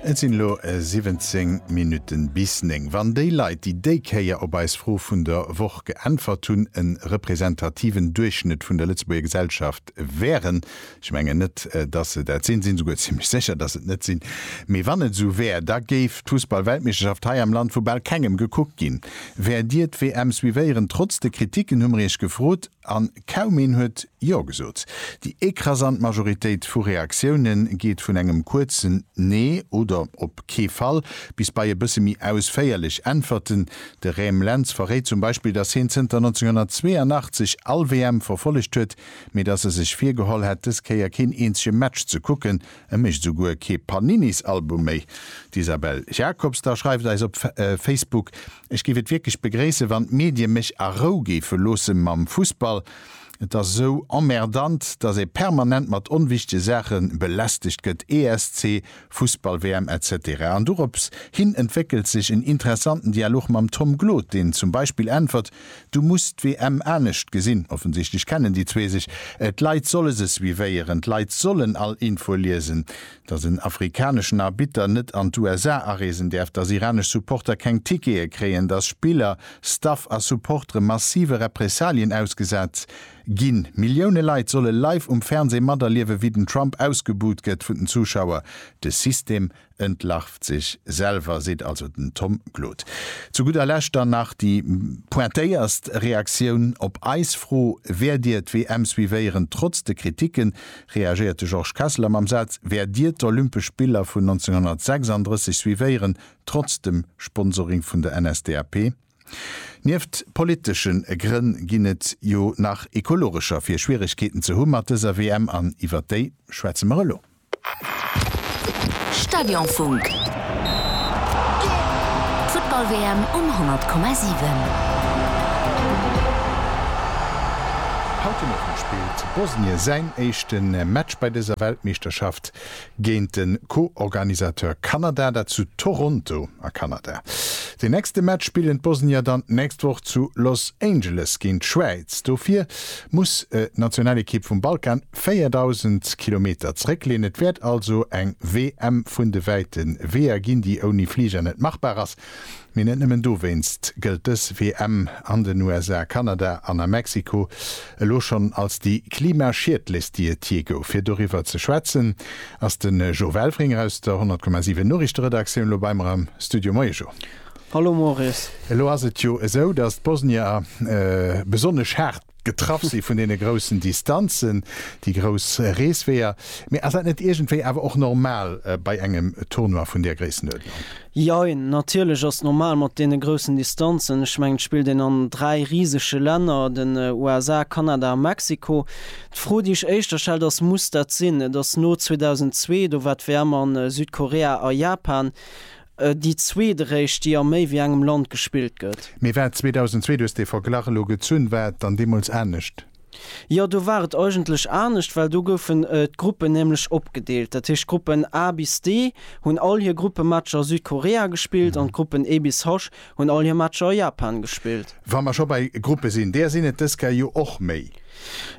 Et sinn elo 17 Minutten bis 9. Wann déi Leit, déi déi Kéier op eis Fro vun der Woch geäntwert hunn, en representativen Duerchschnëtt vun der Lëtzebuerger Gesellschaft wären, ech mengen net, datt se dat sinn, sinn souguer zimlech sécher, datt se et net sinn, mee wann et esou wär, da géif d'Fussballweltmeeschterschaft hei am Land vu bal kengem gekuckt ginn. Wäert Dir d'WM suivéieren? Trotz de Kritiken hu mer Iech gefrot. An kaum een huet Jo gesot. Déi ekrasant Majoritéit vu Reaktioune geet vun engem kuerzen Nee oder op kee Fall bis bei e bësse méi ausféierlech Äntwerten. De Räm Lentz verréit zum Beispill, datt hien zënter 1982 all WM verfollegt huet, mee datt e sech virgeholl hätt, dës Kéier keen eenzege Match ze kucken. E mécht esou guer kee Paninis-Album méi. D'Isabelle Jacobs da schreift eis op Facebook, Ech géif et wierklech begréissen, wann d'Medie mech a Rou géife loosse mam Fussball. Et ass esou emmerdant, datt ee permanent mat onwichtege Saache belästegt gëtt, ESC, Fussball-WM, etc. An dorops hin entwéckelt sech en interessanten Dialog mam Tom Gloot, deen zum Beispill äntwert, Du muss d'WM anescht gesinn. Offensichtlech kennen déi zwee sech. D'Leit solle se suivéieren, d'Leit sollen all Info liesen. dass en afrikaneschen Arbitter net an d'USA areesen däerf, dass iranesch Supporter keng Tickete kréien, dass Spiller, Staff a Supportere massive Repressalien ausgesat ginn. Millioune Leit solle live um Fernseh materliewen, wéi den Trump ausgebuht gëtt vun den Zuschauer. De System entlarvt sech selwer, seet also den Tom Glodt. Zu gudder Lescht dann nach déi pointéierst Reaktioun op eis Fro, Wäert Dir d'WM suivéieren, trotz de Kriticken? reagéiert de Georges Kesseler mam Saz, Wäert Dir d'Olympesch Spiller vun 1936 suivéieren, trotz dem Sponsoring vun der NSDAP? Nieft politesche Grënn ginn et jo nach ekologescher, fir Schwieregkeeten ze hu mat dëser WM, an iwwer déi schwätze mer elo. Stadionfunk, D'Futtball-WM um 100,7. spillt Bosnien säin éischte Match bei dëser Weltmeeschterschaft géint de Co-Organisateur Kanada, dat zu Toronto a Kanada. Deen nächste Match spillen d'Bosnier dann d'nächst Woch zu Los Angeles géint d'Schwäiz. Dofir muss d'Nationalekipp vum Balkan 4.000 Kilometer zeréckleeën. Et wäert also eng WM vun de wäite Weeër ginn, déi ouni Fliger net machbar ass. Mee net nëmmen dowéinst gëllt dës WM an den USA, Kanada an a Mexiko elo schonn als déi klimaschiedlechst, déi et jee gouf. Fir doriwwer ze schwätzen, ass de Jo Welfringer aus der 100,7 Noriichteredaktioun elo bei mer am Studio. Moie Jo. Hallo Maurice. Elo ass et jo esou, datt d'Bosnier besonnesch haart Getraff si vun deene groussen Distanzen, déi grouss Reesweeër. Mee ass dat net iergendwéi awer och normal bei engem Tournoi vun där Gréissenuerdnung? Jein, natierlech ass normal mat deene groussen Distanzen. Ech mengen, et spillt een an dräi risege Länner, den USA, Kanada a Mexiko. D'Fro, déi ech éischter stellt, ass, Muss dat sinn? Et ass no 2002, do war d'WM a Südkorea a Japan. Déi zweeteréischt, déi a méi wéi engem Land gespillt gëtt. Mee war 2002, du hues dee Verglach elo gezunn, war et dann deemools anescht? Jo, do war et eigentlech anescht, well do goufen d'Gruppen nämlech opgedeelt. Dat heescht, d'Gruppen A bis D hunn all hir Gruppematcher a Südkorea gespillt an d'Gruppen E bis H Hunn all hir Matcher a Japan gespillt. Wa mer scho bei Gruppe sinn, där sinn et dës Kä jo och méi.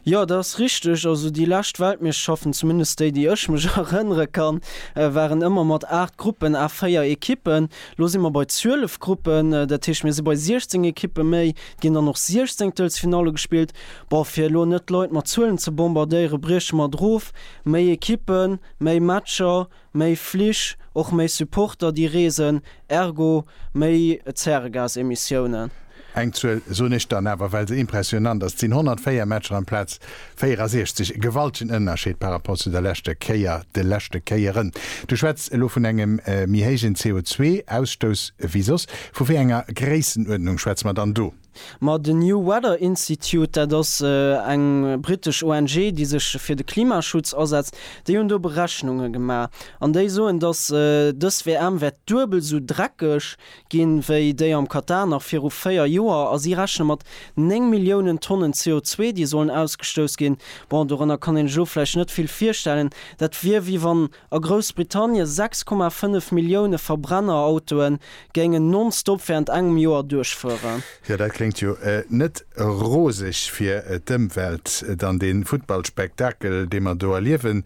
Jo, dat ass richteg. Also déi lescht Weltmeeschterschaften, zumindest déi, déi ech mech erënnere kann, waren ëmmer mat 8 Gruppen à 4 Ekippen. Elo si mer bei 12 Gruppen, dat heescht, mir si bei 16 Ekippe méi. Et ginn dann och Siechzéngtelsfinalle gespillt. Bon, fir elo net d'Leit mat Zuelen ze bombardéieren, brieche mer et erof, Méi Ekippen, méi Matcher, Méi Flich, och méi Supporter déi reesen, ergo méi Zäregasemissiounen. Eng Zuel soen ech dann awer, well se impressionant ass, Et sinn 104 Matcher amplaz 64. E gewaltegen Ënnerscheed par rapport zu der leschter Kéier, de leschte Kéieren. Du schwätz elo vun engem méi héijen CO2-Ausstouss ewéi soss. Vu wéi enger Gréissenuerdnung schwätze mer dann do? Ma den New Weather Institute, dat ass eng brittesch ONG, déi sech fir de Klimaschutz asetzt, déi hunn do Berechnunge gemaach an déi soen, datt dës WM wäert duebel esou dreckeg ginn, wéi déi am Katar nach viru véier Joer. A si rechne mat néng Milliounen Tonnen CO2, déi sollen ausgestouss ginn. Bon, dorënner kann een sech elo vläicht net vill virstellen. Dat wier, wéi wann A Groussbritannien 6,5 Millioune Verbrennerautoen géingen non-stop während engem Joer duerchfueren. Jo, dat kléngt jo net roseg fir d'Ëmwelt. Dann dee Futtballspektakel, dee mer do erliewen.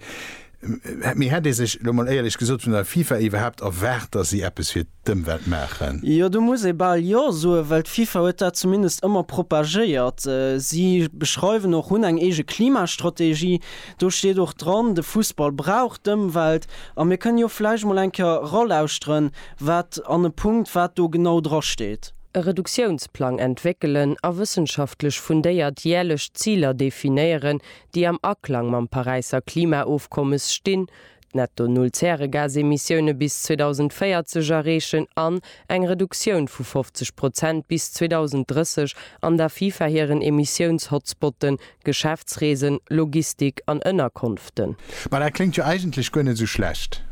Mee hätt ee sech, elo mol éierlech gesot, vun der FIFA iwwerhaapt erwaart, datt si eppes fir d'Ëmwelt maachen. Jo, do muss ee bal Jo soen, well d'FIFA huet dat zumindest ëmmer propagéiert. Si beschreiwen och, hunn eng eege Klimastrategie, do steet och dran, de Fussball brauch d'Ëmwelt. A mir kënnen jo vläicht mol eng Kéier eralauschteren, wat an e Punkt wat do genau dra steet. E Reduktiounsplang entwéckelen a wëssenschaftlech fundéiert järlech Ziler definéieren, déi am Aklang mam Paräisser Klimaofkommes stinn, Netto Null Zäregasemissioune bis 2040 erreechen an eng Reduktioun vu 50 Prozent bis 2030 an der FIFA hiren Emissiouns-Hotspotten, Geschäftsreesen, Logistik an Ënnerkonften. Ma dat kléngt jo eigentlech guer net esou schlecht.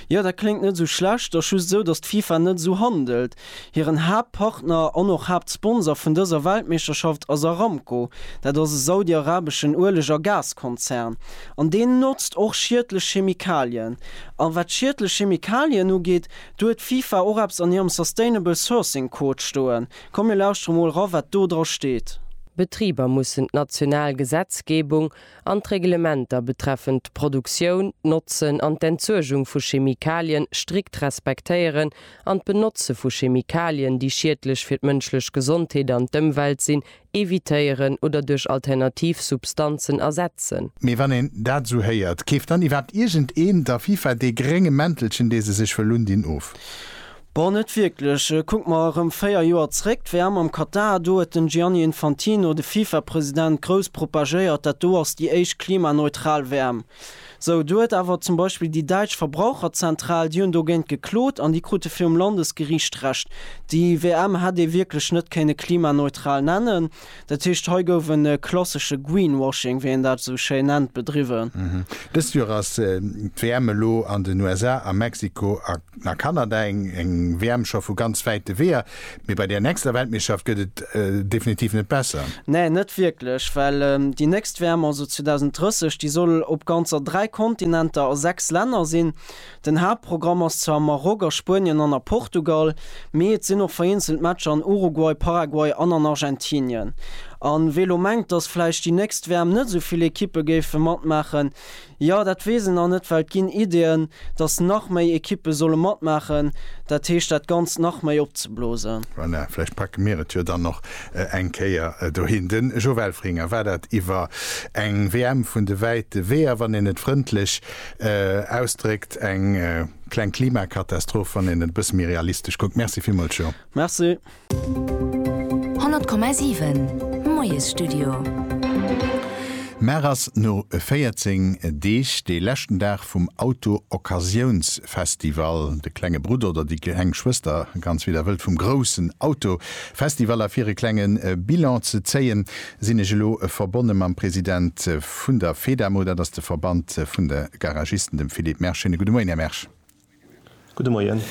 Jo, dat kléngt net esou schlecht, ass just esou, datt d'FIFA net esou handelt. Hiren Haaptpartner an och Haaptsponsor vun dëser Weltmeeschterschaft ass Aramco. Dat ass e saudiarabeschen Ueleg a Gaskonzern. An deen notzt och schiedlech Chemikalien. A wat schiedlech Chemikalien ugeet, do huet d'FIFA och eppes an hirem Sustainable Sourcing Code stoen. Komm mir lauschtere mol ra wat do dra steet. Betriber mussen d'national Gesetzgebung an d'Reglementer betreffend d'Produktioun, d'Notzen an d'Entsuergung vu Chemikalien strikt respektéieren an d'Benotze vu Chemikalien, déi schiedlech fir d'mënschlech Gesondheet an d'Ëmwelt sinn, evitéieren oder duerch alternativ Substanzen ersetzen. Mee wann een dat esou héiert, keeft dann iwwerhaapt iergendeen der FIFA dee grénge Mäntelchen, dee se sech wëll undinn, of? Bon, net wierklech. Kucke mer erëm 4 Joer zréck, d'WM am Katar, do huet den Gianni Infantino, de FIFA-President, grouss propagéiert, dat do ass déi éischt klimaneutral WM. Sou, do huet awer zum Beispill déi däitsch Verbraucherzentral, déi hunn dogéint geklot an déi krute virum Landesgeriicht Recht. Déi WM hätt ee wierklech net kéinne klimaneutral nennen. Dat heescht, hei gouf e klassesche Greenwashing, wéi een dat esou schéin nennt, bedriwwen. Dëst Joer ass d'WM elo an den USA, a Mexiko an a Kanada. Eng WM scho vu ganz wäite Weeër, mee bei där nächster Weltmeeschterschaft gëtt et definitiv net besser. Nee, net wierklech, well déi nächst WM, also 2030, déi soll op ganzer dräi Kontinenter a sechs Länner sinn. Den Haaptprogramm ass zwar am Maroc, a Spuenien an a Portugal, mee et sinn och vereenzelt Matcher an Uruguay, Paraguay an an Argentinien. A wee lo mengt, datt vläicht déi nächst WM net esou vill Ekippe géife matmaachen, jo, dat weess en nach net, well et ginn Ideeën, datt nach méi Ekippe solle matmaachen, dat heescht dat Ganzt nach méi opzeblosen. Voilà, vläicht packe mir et jo dann och eng Kéier dohin. De Jo Welfringer, war dat iwwer eng WM vun de wäite Weeër, wann een et frëndlech Ausdréckt, eng kleng Klimakatastroph, wann een et e bësse méi realistesch kuckt. Merci villmools, Jo. Merci. 100,7, Moiesstudio. Mar ass no 14 Deeg dee leschten Dag vum Auto-Occasiouns-Festival, de klenge Brudder oder déi kleng Schwëster, ganz wéi der wëllt, vum groussen Auto-Festival, a fir e klenge Bilan ze zéien, Sinn ech elo verbonne mam President vun der Fedamo, dat ass de Verband vun de Garagisten, dem Philippe Mersch. Schéine gudde Moien, Här Mersch. Gudde Moien.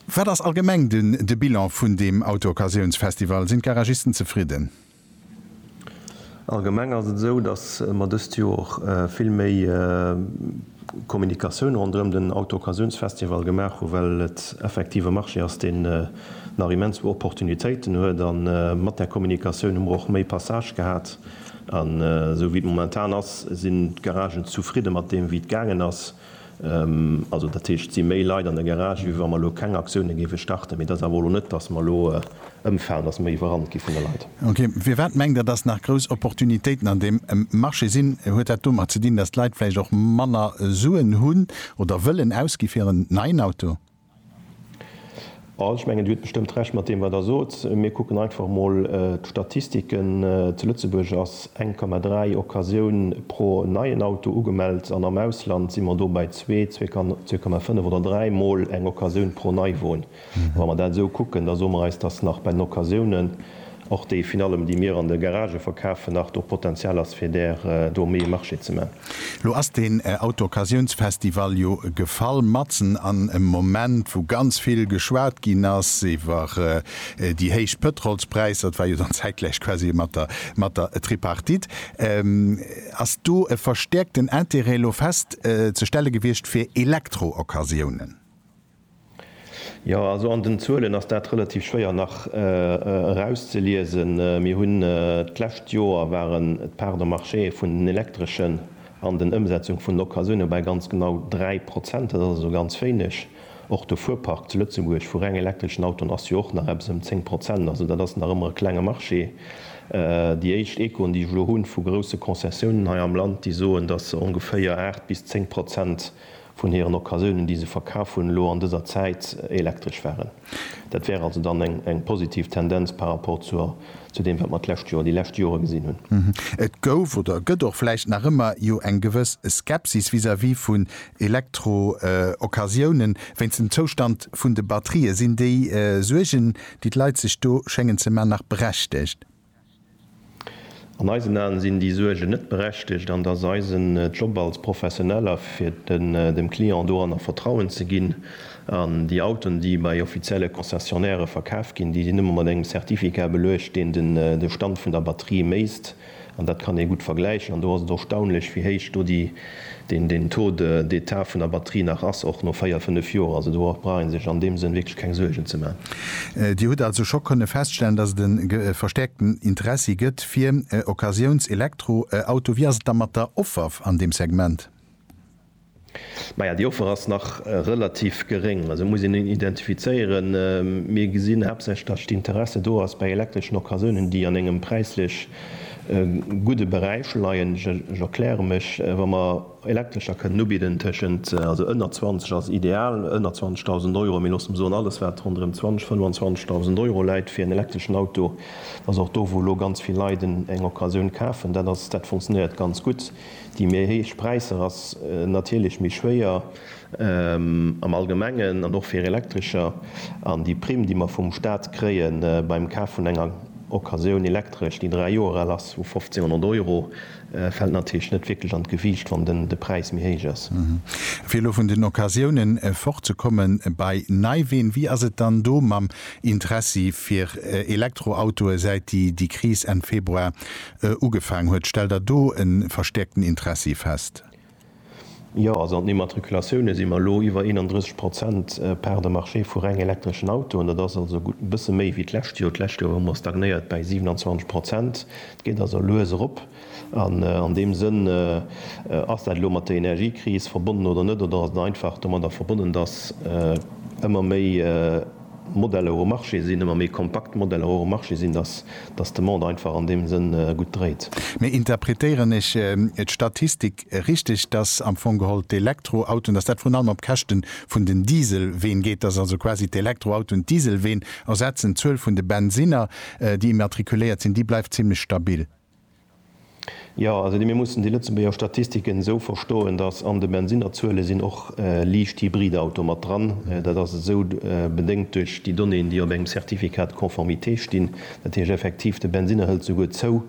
Wat ass allgemeng den de Bilan vun deem Auto-Occasiouns-Festival? Sinn d'Garagisten zefridden? Allgemeng ass et esou, datt mer dëst Joer vill méi Kommunikatioun ronderëm den Auto-Occasiouns-Festival gemaach hu well et effektiv e Marché ass, deen, nach immens u Opportunitéiten huet a mat där Kommunikatioun hu mer och méi Passage gehat an esou wéi et momentan ass, sinn d'Garagen zufridde mat deem wéi et gaangen ass. Also dat heescht et si méi Leit an der Garage wéi wa mer elo keng Aktioune géife starten, mee et ass awer elo net, datt mer elo ëmfalen, datt mer iwwerrannt gi vun de Leit. Ok, firwat mengt Der, datt nach grouss Opportunitéiten an deem Marché sinn? Huet dat domat ze dinn, datt d'Leit vläicht och manner Suen hunn oder wëllen ausgi fir en neien Auto? Ech mengen, Dir hutt bestëmmt Recht mat deem, wat Der sot. Mir kucken einfach emol d'Statistiken. Zu Lëtzebuerg ass 1,3 Occasioun pro neien Auto ugemellt an am Ausland si mer do bei zwee, 2,5 oder dräi Mol eng Occasioun pro Neiwon. A wa mer dat esou kucken, da soe mer eis, dass nach bei den Occasiounen Och déi vun allem déi mir an de Garagë verkafen nach do Potenzial ass fir där do méi e Marché ze man. Lo ass deen Autooccasiounsfestival jo gefall matzen an em Moment wou ganz vill geschwat ginn ass iwwer déi héich Pëtrolspräisser, et war jo dann zäitgläich quasi mat der mat der Tripartite, ass do e verstäerkten Intérêt lo fest ze stelle gewiescht fir Elektrooccasionen? Jo, also an den Zuelen ass dat relativ schwéier nach erauszeliesen. Mir hunn d'lescht Joer waren d'Parts de marché vun den Elektreschen an den Ëmsetzung vun den Occasioune bei ganz genau 3 Prozent. Dat ass also ganz wéineg. Och de Fuerpark zu Lëtzebuerg vu reng elektreschen Autoen ass jo och nach eppes ëm 10 Prozent. Also dat ass nach ëmmer e klenge Marché. Déi éischt Echoen, déi ech elo hu vu grousse Concessiounen hei am Land, déi soen, datt se ongeféier 8 bis 10 Prozent vun hiren Occasiounen, déi se verkaf hunn, elo an dëser Zäit elektresch waren. Dat wär also dann eng positiv Tendenz par rapport zu deem, wat mer d'lescht Joer, déi lescht Jore gesinn hunn. Et gouf oder gëtt och vläicht nach ëmmer jo eng gewëss Skepsis vis-à-vis vun Elektro-Occasiounen, wéinst dem Zoustand vun de Batterië. Sinn déi Suergen, déi d'Leit sech do schéngen ze man, nach berechtegt? An eisen Aen sinn déi Suergen net berechtegt an et ass eisen Job als Professioneller fir dem Client doranner Vertrauen ze ginn. An déi Autoen déi bei offizielle Concessionnairë verkaf ginn, déi sinn ëmmer mat engem Certificat beluecht deen de Stand vun der Batterie méisst. An dat kann ee gutt vergläichen an do ass et erstaunlech wéi héich do déi deen den Taux de d'état vun der Batterie nach ass, och no véier, fënnef Joer. Also do brauch ee sech an deem Sënn wierklech keng Suergen ze maachen. Dir hutt also scho kënne feststellen, dass et e verstäerkten Interessi gëtt fir Occasiouns-Elektroautoe. Wéi ass et da mat der Offer an deem Segment? Maja, déi Offer ass nach relativ geréng. Also et muss een identifizéieren. Mir gesinn haaptsächlech, dass d'Interesse do ass bei elektreschen Occasiounen, déi an engem präislech E gudde Beräich leien, ech erkläre mech, wa mer Elektrescher kënnen ubidden tëschent, also ënner 20 ass ideal, ënner 20.000 Euro, mee loosse mer soen, alles wat ronderëm 20, 25.000 Euro läit fir en elektreschen Auto, ass och do wou elo ganz vill Leit eng Occasioun kafen, dat ass, dat funktionéiert ganz gutt. Déi méi héich Präisser ass natierlech méi schwéier. am Allgemengen an och fir Elektrescher, an déi Primm, déi mer vum Stat kréie beim Kaf vun enger Occasioun Elektresch, déi dräi Joer al ass, vu 1.500 Euro, fält natierlech net wierklech an d'Gewiicht, wann de Präis méi héich ass. Fir elo vun den Occasiounen fortzekommen, bei Neiween, wéi ass et dann do mam Interessi fir Elektroautoe säit déi Kris Enn Februar ugefaangen huet? Stellt Der do e verstäerkten Interessi fest? Jo, also an den Immatriculatioune si mer elo iwwer 31 Prozent Part de marché vu reng elektreschen Autoen. Dat ass also e gutt bësse méi wéi d'lescht Joer. D'lescht Joer hu mer stagnéiert bäi 27 Prozent. Et geet also lues erop. An an deem Sënn, ass dat elo mat der Energiekris verbonnen oder net, oder ass et einfach domadder verbonnen, datt ëmmer méi, Modeller um Marché sinn, ëmmer méi kompakt Modeller och um Marché sinn, dass dass de Monde einfach an deem Sënn gutt dréit. Mee interpretéieren ech d'Statistik richteg, dass am Fong geholl d'Elektroautoen, dass dat vrun allem op Käschte vun den Dieselween geet, dass also quasi d'Elektroautoen d'Dieselween ersetzen, d'Zuel vun de Bensinner, déi immatrikuléiert sinn, déi bleift zimlech stabil? Jo, also mir mussen déi Lëtzebuerger Statistiken esou verstoen, datt an de Bensinnerzuele sinn och liicht Hybridautoe mat dran. Dat ass esou bedéngt duerch déi Donnéeën, déi op engem Certificat de conformité stinn. Dat heescht effektiv, de Bensinner hëlt souguer zou.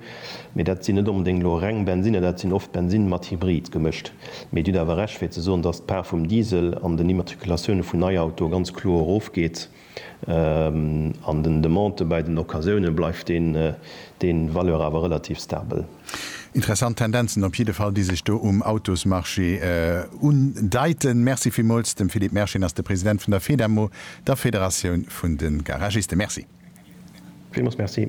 Mee dat sinn net onbedéngt elo reng Bensinner, dat sinn oft Bensinne mat Hybrid gemëscht. Mee Dir hutt awer Recht fir ze soen, datt d'Part vum Diesel an den Immatriculatioune vun Neiautoe ganz kloer erofgeet. An den Demandë bäi den Occasioune bleift dee Valeur awer relativ stabel. Interessant Tendenzen op jidde Fall, déi sech do um Autosmarché undeiten. Merci villmools. De Philippe Mersching ass de President vun der Fedamo, der Federatioun vun de Garagisten. Merci. Villmools Merci.